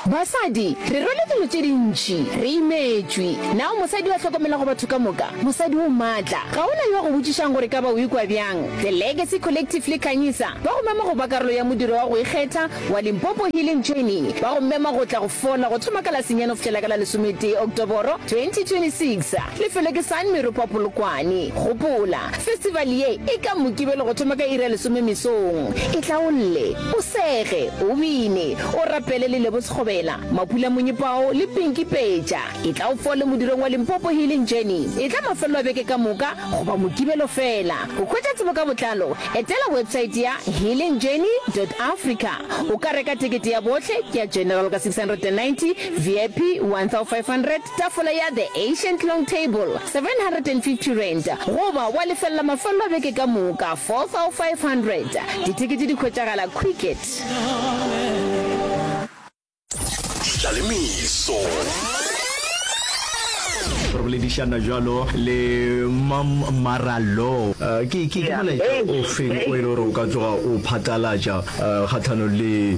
Basadi, re rwele dilo tše dintši, re imetšwe. Na o mosadi yo a hlokomelago batho ka moka? Mosadi o matla. Ga go na yo a go botšišago gore e ka ba o ikwa bjang. The Legacy Collective le Khanyisa ba go mema go ba karolo ya modiro wa go ikgetha wa Limpopo Healing Journey. Ba go mema go tla go fola go thoma ka la senyane go fihlela ka la lesometee Oktoboro 2026. Lefelo ke San Meropa Polokwane. Gopola, festival ye e ka Mokibelo go thoma ka iri ya lesome mesong. Itlaolle, o sege, o bine, o rapele le Lebo Sekgobela, Mapula Monyepao le Pinky Peja. E tla o fole modirong wa Limpopo Healing Journey. E tla mafelelo a beke ka moka goba Mokibelo fela. Go hwetša tsebo ka botlalo, etela website ya healingjourney.africa. O ka reka tekete ya bohle, ke ya General ka 690, VIP 1500, Tafola ya The Ancient Long Table, R750, goba wa lefelela mafelelo a beke ka moka, R4,500. Dithekete di hwetšagala Quicket. Tla le meso. Re boledišana jalo le Mam Mara Law. Ke molaetša o feng o e le gore o ka tsoga o phatlalatša kgahlanong le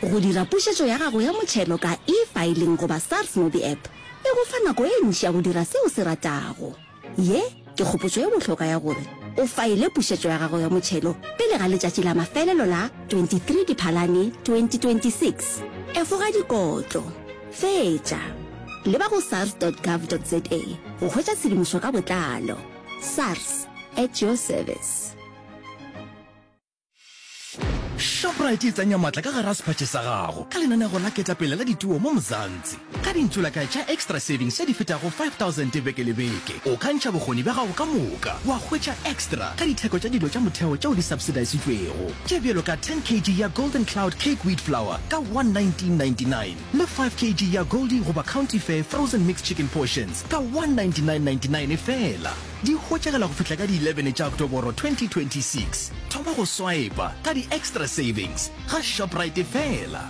Go dira pušetšo ya gago ya motšhelo ka e-filing goba SARS MobiApp e go fa nako e ntši ya go dira se o se ratago. Ye ke kgopotšo e bohlokwa ya gore o faile pušetšo ya gago ya motšhelo pele ga letšatši la mafelelo la 23 Diphalane 2026. Efoga dikotlo. Fetša. Leba go sars.gov.za go hwetša tshedimošo ka botlalo. SARS, at your service. Shoprite e tsenya matla ka gara sephatše sa gago ka lenanego la ketapele la dituo mo Mzansi. Ka dintsulakae tša Extra Savings tše di fetago 5000 beke le beke, o ka ntšha bokgoni bja gago ka moka wa hwetša extra ka ditheko tša dilo tša motheo tšeo di subsidisitšwego, tše bjalo ka 10 kg ya Golden Cloud Cake Wheat Flour ka 119.99 le 5 kg ya Goldie goba County Fare Frozen Mixed Chicken Portions ka 199.99 fela. Di hwetšagala go fihla ka di 11 tša Oktoboro 2026. Thoma go swaepa ka di Extra Savings ga Shoprite fela.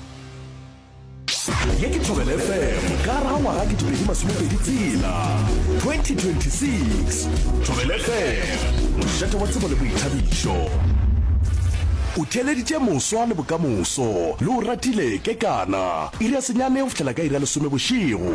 Ye ke Thobela FM ka ra ngwaga ke dipedi masomepedi tsela 2026. Thobela FM, mošate wa tsebo le boithabišo. O theeleditše moswa le bokamoso, le o ratile kekana. Iri ya senyane go fihlela ka iri ya lesome bošego.